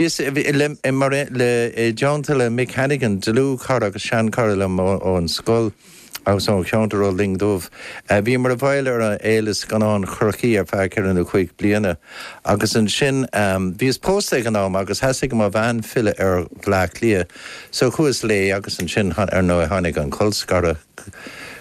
Is mar aon le, i dteannta le Mick Hannigan, dlúthchara agus seanchara liom ón scoil agus ón cheantar ó Linn Dubh, a bhíomar i bhfeighil ar an Fhéile Scannán Chorcaí ar feadh ceithre nó cúig bliana agus ansin bhíos pósta ag an am agus theastaigh ó mo bhean filleadh ar Bhleá Cliath so chuas léi agus ansin ar ndóigh tháinig an colscaradh.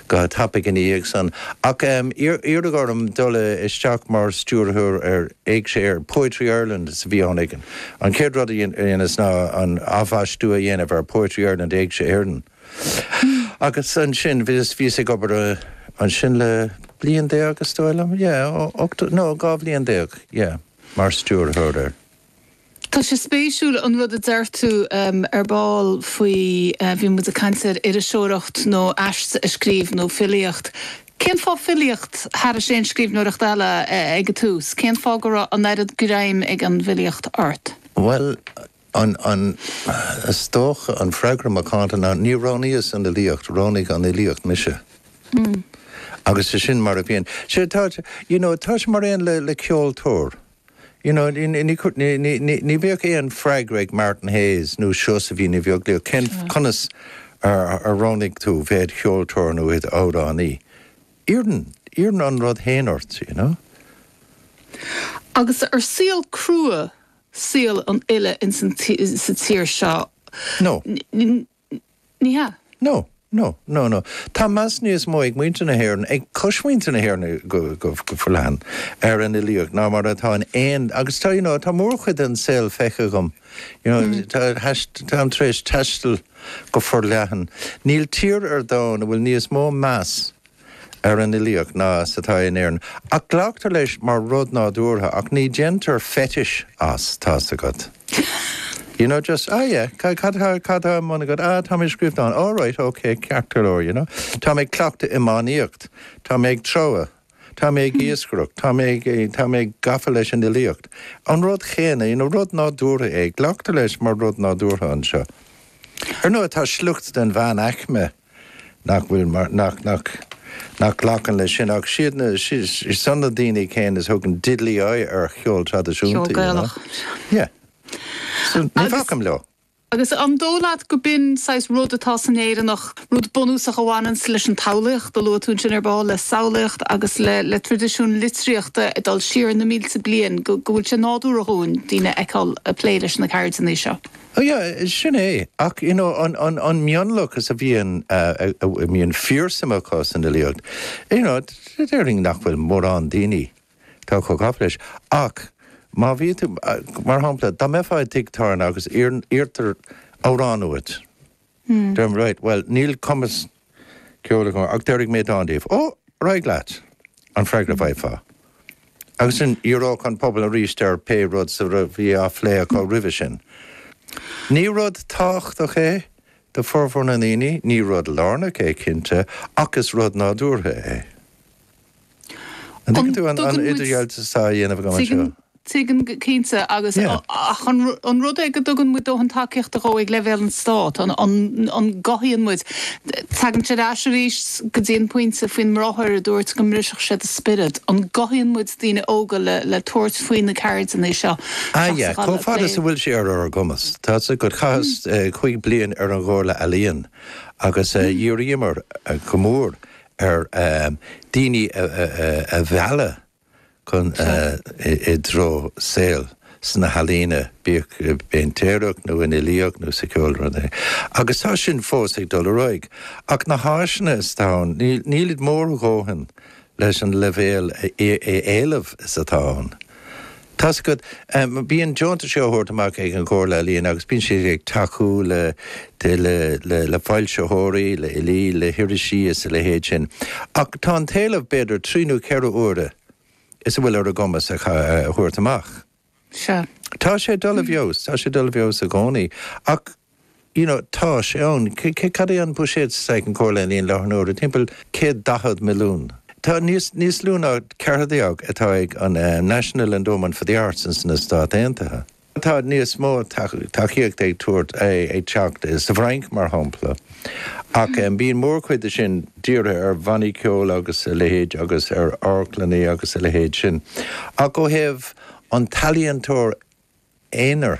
go tapaidh ina dhiaidh san. Ach iarradh orm dul isteach mar stiúrthóir ar Éigse Éireann, Poetry Ireland a bhí ann againn. An chéad rud a dheineas ná an athbhaistiú a dhéanamh ar Poetry Ireland, Éigse Éireann. Agus ansin bhíos ag obair ansin le bliain déag is dóigh liom, yeah, nó dhá bhliain déag, yeah, mar stiúrthóir air. Tá sé spéisiúil an rud a dúirt tú ar ball faoi bhí muid ag caint ar iriseoireacht nó aiste a scríobh nó filíocht. Cén fáth filíocht thairis aon scríbhneoireacht eile ag an tús? Cén fáth go raibh an oiread greim ag an bhfilíocht ort? Bhuel, is dócha an freagra macánta ná níor roghnaíos an fhilíocht, roghnaigh an fhilíocht mise. Agus sin mar a bhíonn sé. Tá, you know, tá sé mar aon le ceoltóir. You know, ní bheadh aon freagra ag Martin Hayes nó Seosaimhín Ní Bheaglaoich, cén, conas ar roghnaigh tú bheith i do cheoltóir nó i d'amhránaí? Iarrann, iarrann an rud fhéin ort, you know. Agus ar saol crua saol an fhile ins an, sa tír seo? No. Ní hea. No, no, no, no. Tá meas níos mó ag muintir na hÉireann, ag cosmhuintir na hÉireann go forleathan, ar an fhilíocht ná mar atá in aon, agus tá, you know, tá mórchuid den saol feicthe agam, you know, táim tar éis taisteal go forleathan, níl tír ar domhan a bhfuil níos mó meas ar an fhilíocht ná is atá in Éirinn, ach glactar leis mar rud nádúrtha ach ní dhéantar fetish as, tá's agat. You know, just, ah yeah, cad atá, cad atá i mbun agat? Ah, tá mé ag scríobh dán. All right, ok, ceart go leor, you know. Tá mé ag cleachtadh iománaíocht, tá mé ag treabhadh, tá mé ag iascaireacht, tá mé, tá mé gafa leis an fhilíocht. An rud chéanna, you know, rud nádúrtha é, glactar leis mar rud nádúrtha anseo. Ar ndóigh, tá sliocht den mheánaicme. nach bhfuil mar, nach, nach, nach nglacann leis sin ach siad na, siad san na daoine céanna is thugann diddly-eye ar cheol traidisiúnta, you know. Ceol Gaelach. Yeah. So, ní bhacaim leo. Agus an dóigh leat gurb in saghas rud atá san Éireannach, rud bunúsach a bhaineanns leis an tsamhlaíocht, a luaigh tú ansin ar ball, le samhlaíocht agus le, le traidisiún litríochta ag dul siar na mílte bliain, go, go bhfuil sé nádúrtha dhúinn, daoine a fheiceáil ag plé leis na ceirdeanna seo? Ó yeah, sin é. Ach you know an mionlaochas a bhíonn, a mbíonn fíorshuim acu san fhilíocht, you know déarfainn nach bhfuil mórán daoine atá chomh gafa leis. Ach má bhíonn tú, mar shampla, dá mbeifeá i dtigh tábhairne agus iarrtar amhrán uait, Hm. Deir tú right, Bhuel, níl cumas ceoil agam ach déarfaidh mé dán daoibh. Ó, ar aghaidh leat! an freagra a bhfaighfeá. Agus ansin dhíreodh an pobal aríst ar pé rud sa a bhí á phlé acu roimhe sin. Ní rud tábhachtach é do fhormhór na ndaoine, ní rud lárnach é, cinnte, ach is rud nádúrtha é. An dtuigeann tú an idirdhealú atá á dhéanamh agam anseo? Tuigim go cinnte agus, ach an rud é go dtugann muid dóthain tacaíochta dhó ag leibhéal an Stáit, an gcothaíonn muid, tagaim ar ais arís go dtí an pointe faoin mbráthair a dúirt go mbrisfeadh sé do spiorad, an gcothaíonn muid daoine óga le tabhairt faoi na ceirdeanna seo seachas a dhul ag plé le. Chomh fada is a bhfuil sé ar ár gcumas, tá's agat. Chaitheas cúig bliain ar an gComhairle Ealaíon agus dhíríomar go mór ar dhaoine a mhealladh chun i dtreo saol sna healaíona, bíodh i bpéintéireacht nó i bhfilíocht nó sa cheol, pé rud é. Agus tá sin fós ag dul ar aghaidh. Ach na háiseanna is atá ann, nílid mór a ndóthain leis an leibhéal éileamh is atá ann. Tá's agat, bíonn deontais á thabhairt amach ag an gComhairle Ealaíon agus bíonn siad ag tacú le foilsitheoirí, le filí, le hirisí is a leithéid sin, ach tá an t-éileamh b'fhéidir trí nó ceithre huaire is a bhfuil ar a gcumas a thabhairt amach. Tá sé dul i bhfeabhas, tá sé dul i bhfeabhas i gcónaí, ach you know tá sé ann. Cad é an buiséad atá ag an gComhairle Ealaíon i láthair na huaire? Timpeall céad daichead milliún. Tá níos, níos lú ná an céatadán atá ag an eh National Endowment for the Arts in sna Stáit Aontaithe. Tá níos mó tacaíochta ag tabhairt, ag teacht insa bhFrainc mar shampla. Ach eh bíonn mór chuid de sin dírithe ar bhannaí ceoil agus a leithéid agus ar amharclannaí agus a leithéid sin. Ach ó thaobh an t-ealaíontóir aonair,